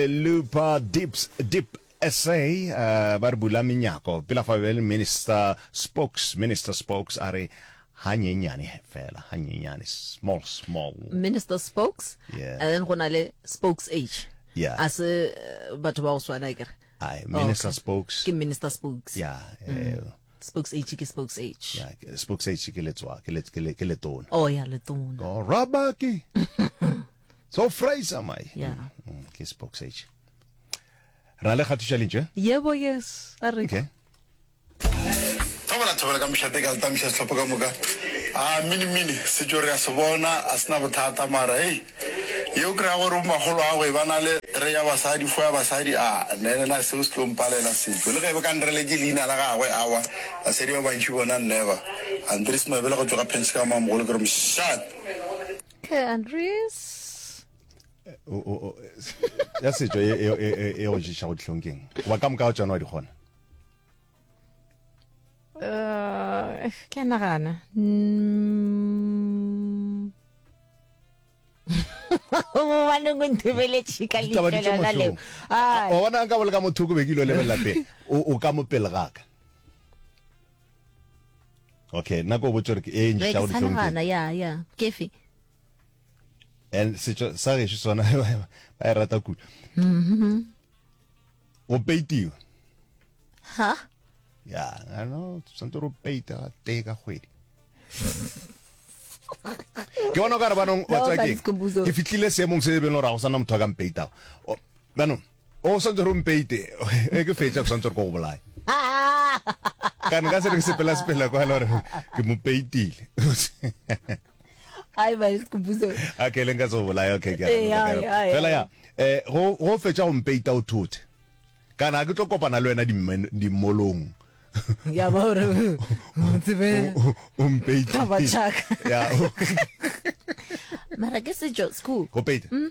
Lepa Dips Dip SA ba re bula menyako pela fa bjale minister spokes minister spokes a re hanyenyane fela hanyenyane small small minister spokes yeah. and then go na le spokes age yeah. a se eh, batho ba go swana kere Aye, oh, minister oh, okay. spokes ke minister spokes yeah, mm. yeah. Mm. spokes age ke spokes age yeah, spokes age ke letswa ke letona oh ya yeah, letona oh, rabaki so fraser my Yeah. Mm, mm, ke spoke sage ra le kgatiša lentšwe yebo yes a re okay thobela thobela ka mošate ka leta moša setlhopho ka moka a minimini setso re a se bona a sena bothata mara hei yeo kry-a gore bo magolo ago e ba na le re ya basadi fo ya basadi a nenena seo se tlo mpalela setso le ge e be ka nrele ke leina la gagwe awa basadi ba bantši bona nneba andres mabele go tsoga pense ka mamogolo ke re mošate Okay, Andres. Eh, oh, oh, oh. ya setšo e, e, e, e go ješa go dihlong keng goba ka moka o tsona wa di kgona eh, ke a nagana mm. bobaneng o nthebeletše ka lefelela leo o bona ka bole ka mothoko be ke ilo lebelela pele o ka mopele gaka okay nna ko botse gore ke e ntšha go ditlhong ya ya kefe and setso sa gešo sona ba e rata kudu mm-hmm. go peitiwa ha ya ano santse ro peita ga tee ka kgwedi ke bona o ka re banong wa tswa ke ke fitlhile seemong se e beng gore ga go sana motho a ka mpeitago banong o swantse gore o mpeite e ke fetša ke swantse gore ko go bolae ka nka se re ke sepela sepela kwa le gore ke mo peitile ai ba ke buse okay le nka tso bolaya okay ke eh, fela ya eh go go fetša go mpeita o thothe kana ke tlo kopana le wena di molong ya ba gore o tsebe o mpeita ba chaka ya mara ke sejo school go peita mm.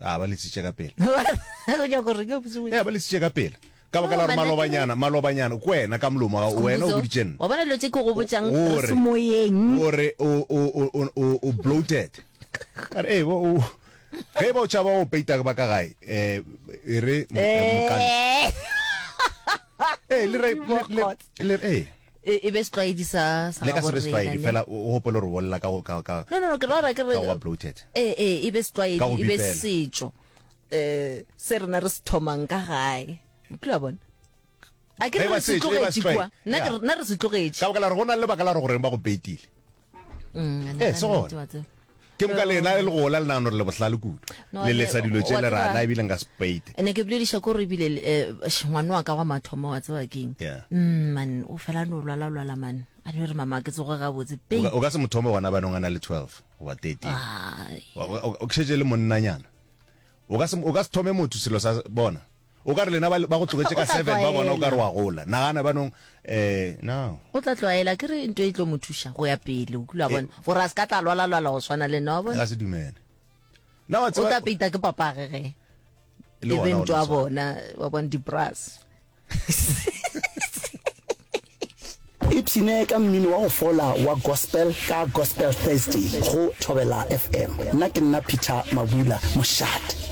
a ba letsitše ka pela o nyaka gore ke botse ya ba letsitše ka pela ka baka la gore malobanyana malobanyana ko wena ka molomo wa wena o boditše nna wa bona dilo tse ke go botsang re se moyeng gore o o o o bloated ka re e bo o ge ba o tšhaba o peita ba ka gae eh e re mokane eh le re le eh E, e be setlwaedi sa sa le ka se be setlwaedi fela o gopole gore bolela ka ka ka no no no ke rara ke re wa bloated e e e be setlwaedi e be setšo eh se rena re se thomang ka gae o tla bona a ke re se tlogetše kwa nna re se tlogetše ka baka la re go na le baka la re gore ba go betile ee se gona ke moka lena le go ola lenano re le bohlale kudu le lesa dilo tše le rana ebile nka spate ne ke bolediša ko re ebile eh, ngwane wa ka wa mathomo wa tseba keng mm, man o fela no lwala lwala man a ne re mama ke tsoge gabotse pe o ka se mothomo gona banong a na le 12 goba 13 o kšhetse le monnanyana o ka se thome motho selo sa bona O ka re lena ba, ba go tlogetše ka seven, ba bona o ka re wa gola. Nagana banong, eh, now. O tla tlwaela, ke re nto e tlo mo thuša go ya pele, o kula bona, gore a se ka tla lwala-lwala go swana le nna, wa bona. Ga se dumele. Na wa tseba. O tla peita ke papage ge. Le wena o tla. Wa bona, wa bona di-brass. ipshine ka mmino wa go fola wa gospel ka gospel thursday go thobela fm nna ke nna peter mabula mošate